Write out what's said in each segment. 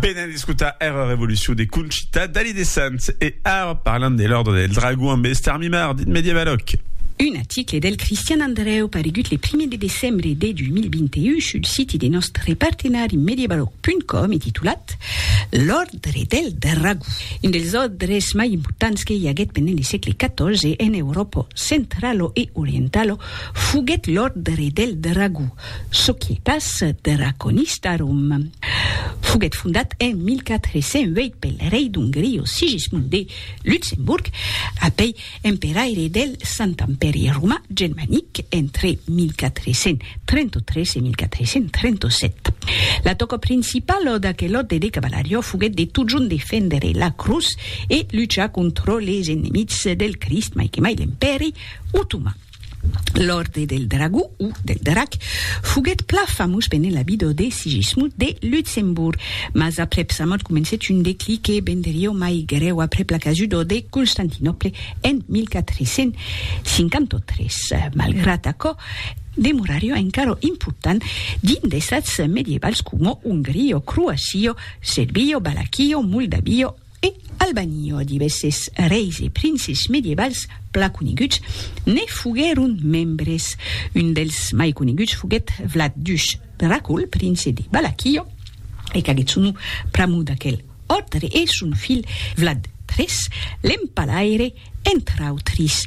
Venèm escotar era revolucion de Conchita Dalí de Sants e ara parlam de l'Òrdre del Dragon ambe Esther Mimard, dit Medievaloc. Un article del Cristian Andrèu paregut le primièr de decembre de 2021 sul siti de nòstre partenari Medievaloc.com e titulat L'Òrdre del Dragon, un dels òrdres mai importants que i aguèt pendent le sègle XIV en Euròpa centralo e orientalo foguèt l'Òrdre del Dragon, Societas Draconistarum foguèt fondat en 1408 pel rei d'Ongria Sigismund de Luxemburg, apèi emperaire del Sant Empèri Romà Germanic entre 1433 e 1437. La tòca principala d'aquel òrde de cavalariá foguèt de totjorn defendre la crotz e luchar contra les enemics del Crist, mai que mai l'Empèri Otoman. L'Òrdre del Dragó, o del Drac, foguèt plan famós pendent la vida de Sigismund de Luxemborg, mas aprèp sa mòrt comencèt un declic que venderió mai grèu aprèp la casuda de Constantinòple en 1453. Malgrat aquò, demorarió encara important dins d'estats medievals coma Ongria, Croacia, Serbia, Valaquia, Moldavia, E al banio divèsses reis e princes medievals plan coneguts ne foguèron membres. Un dels mai coneguts foguèt Vlad Dush Dracul, prince de Balaquio, e qu'aguèt son nom pr'amor d'aquel òrdre e son filh Vlad iii, l'empalaire, entre autris,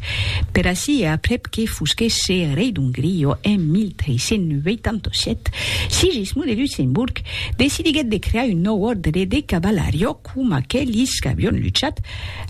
per ací e aprèp que fosquèsse rei d'Ongria en 1387, Sigismond de Luxemborg decidiguèt de crear un nòu òrdre de cavalariá coma aquelis qu'avián luchat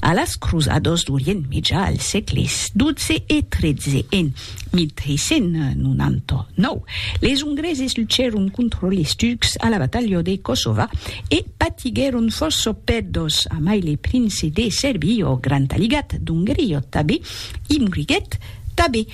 a las crosadas d'Orient Mejà al sègle xii e xiii en 1399, les Ongreses luchèron contra les Turcs a la batalha de Kosova e patiguèron fòrça pèrdas, amai le prince de Serbia, ò Grand Aligat d'Ongria tabé, i moriguèt tabé.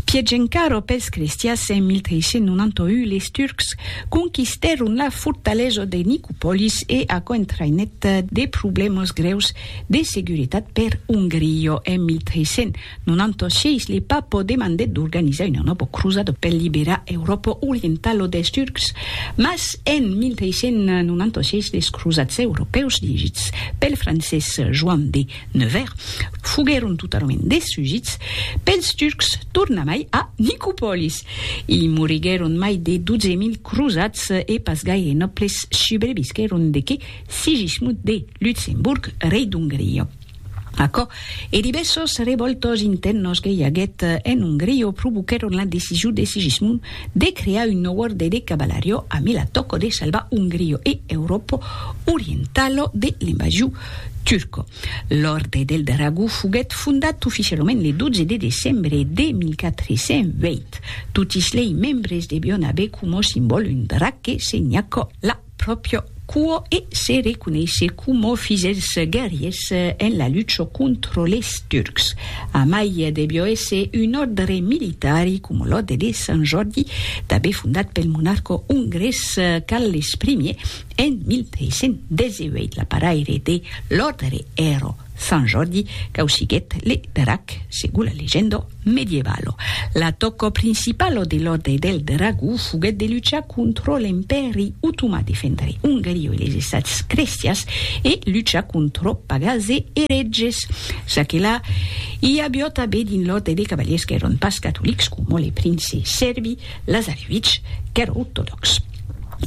Pièch encara pels crestias, en 1391 les Turcs conquistèron la fortalesa de Nicopolis e aquò entraïnèt de problèmas grèus de seguretat per Ongria en 1300. Non anto sièis le Papo demandèt d'organizar una nòva crosada per liberar Euròpa orientala dels Turcs, mas en 1396 les crosats europèus dirigits pel francés Joan de Nevers foguèron totalament destrugits pels Turcs tornamai a Nicopòlis. I moriguèron mai de 12.000 crosats e pas gaire nòbles subrevisquèron de que Sigismund de Lutzemburg, rei d'Ongria. Aquò e divèssos revòltos intèrnos que i aguèt en Ongria provoquèron la decision de Sigismund de crear un nòu òrde de cavalario amé la tòca de salvar Ongria e Euròpa orientala de l'invasion turca. L'Òrde del Dragó foguèt fondat oficialament le 12 de decembre de 1420. Totis lei membres devián aver coma simbòl un drac que senhaca la pròpio cuò e se reconeishe coma fis dels guerriers en la lucha contra les Turcs. Amai debió èsser un òrdre militari, coma l'òrdre de Sant Jòrdi, tanben fondat pel monarca ongrés Carles Ier en 1318. L'aparaire de l'òrdre èra Sant Jordi causiguèt le drac, segon la legenda medievalo. L'atòca principala de l'Òrdre del Dragó foguèt de luchar contra l'Empèri Otomà, defendre Ongaria e les Estats crestians e luchar contra pagans e eretges. Ça que la, i aviá tanben dins l'Òrdre de cavaliers qu'èran pas catolics, coma le prince sèrbi Lazarevich, qu'èra ortodòx.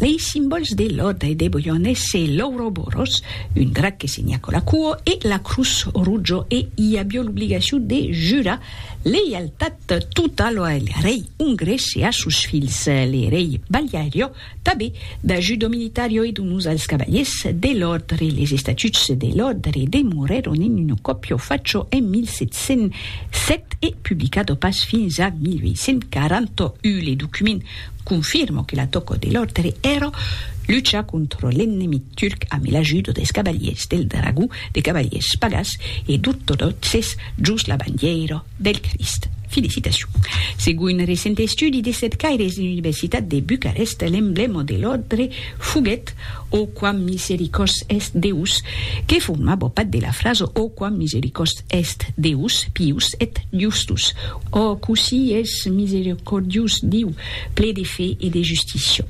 Lei simbòls de Lòda e de Boion èsse l'Ouroboros, un drac que se nhaco la cuo, e la Crus Rujo e i avió l'obligacion de jurar leialtat totalo al rei ongrés e a sos filhs, le rei Baliario, tanben d'ajudo militario e d'onors als cavaliers de l'òrdre. Les estatuts de l'òrdre demorèron en un còpio facho en 1707 e publicado pas fins a 1841. Le document Confirmo que la tòca de l'òrdre èra luchar contra l'ennemic turc amé l'ajuda des cavaliers del Dragó, de cavaliers pagàs e d'ortodòxes jos la bandièira del Crist. Felicitacion. Segon un recent estudi de cercaires de l'Universitat de Bucarest, l'emblèma de l'òrdre foguèt O quam misericors est Deus, que formava part de la frasa O quam misericors Est Deus pius et justus. Ò, cossí es misericordius Diu, ple de fe e de justícia!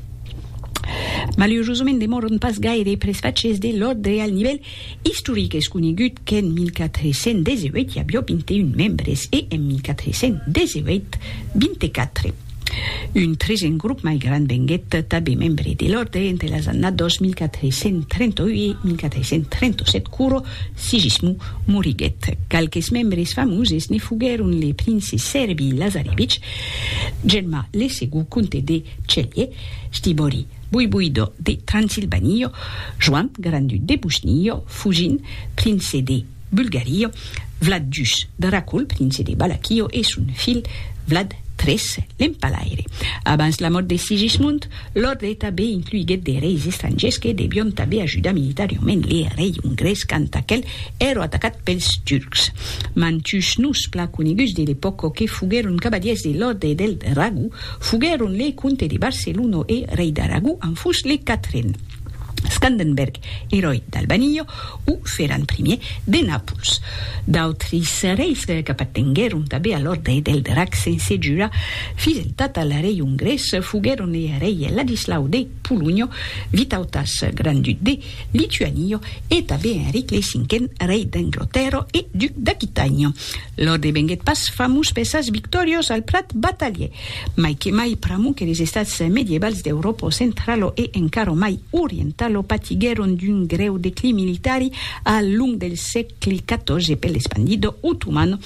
Malurosament demòron pas gaire pres faches de l'òrdre al nivèl istoric. Es conegut qu'en 1418 i avió 21 membres e en 1418, 24. Un tresen grop mai grand venguèt tanben membre de l'òrdre entre las annadas 1438-1437 quoro Sigismond moriguèt. Qualques membres famoses ne foguèron le prince Serby Lazarevich, Germà le segond comte de Celje, Stibori voivoidò de Transilvània, Joan grand-duc de Bosnia, Fugin, prince de. Bulgario, Vlad Jus, Dracul, prince de Balaquio, e son filh Vlad tres, l'empalaire. Abans la mòrt de Sigismund, l'òrdre tanben incluiguèt de reis estrangièrs que devion tanben ajudar militariament le rei ongrés quand aquel èra atacat pels turcs. Mantuns noms plan coneguts de l'epòca que foguèron cavalièrs de l'òrdre del Dragó foguèron le comte de Barcelona e rei d'Aragó en fus le quatren, Scandenberg, eròi d'Albanio, o fèran primièr de Nàpols. D'autris reis qu'apartenguèron tanben a l'òrdre del Drac sense jura fins entat al rei ongrés foguèron er rei Ladislau de Polonha, Vitautas, grand-duc de Lituània, e tanben Enric lei Cinquen, rei d'Anglotèrra e duc d'Aquitània. Lor devenguèt pas famós per sas victòrias al plat batalhè, mai que mai pr'amor que les estats medievals d'Euròpa centrala e encara mai orientala patiguèron d'un grèu declin militari al long del sègle xiv per l'espandida otomana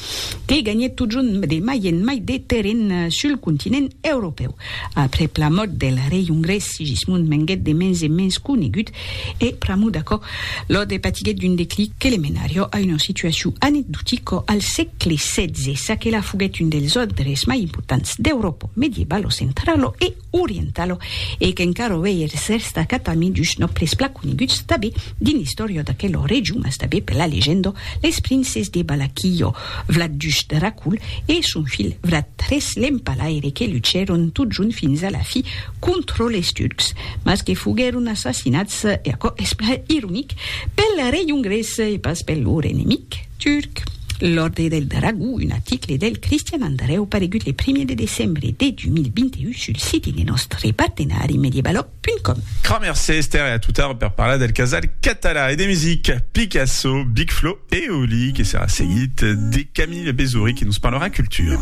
que ganhèt totjorn de mai en mai de terren sul continent europèu. Aprèp la mòrt del rei ongrés Sigismund venguèt de mens en mens conegut E, pr'amor d'aquò, Lode patiguèt d'un declic que le menarió a una situacion anecdotica al sègle setze, ça que la foguèt un dels òdres mai importants d'Euròpa medievalo centralo e orientalo e qu'encara uèi es destacat amid dus nòbles plan coneguts tanben dins l'istòria d'aquela region, mas tanben per la legenda, les princes de Balaquillo, Vlad ii Dracul e son filh Vlad iii l'Empalaire que luchèron totjorn fins a la fi contra les Turcs, mas que foguèron assassinats, e aquò es plan ironic, pel rei ongrés e pas per lor enemic turc. L'Òrdre del Dragó, un article del Cristian Andrèu paregut le primièr de decembre de 2021 sul site de nòstre partenari mediebaloc.com. Cramer se Esther e a Toutard per parlar del casal catalan e de musica, Picasso, Big Flo e Oli, que serà seguit de Camille Bezory que nos parlarà cultura.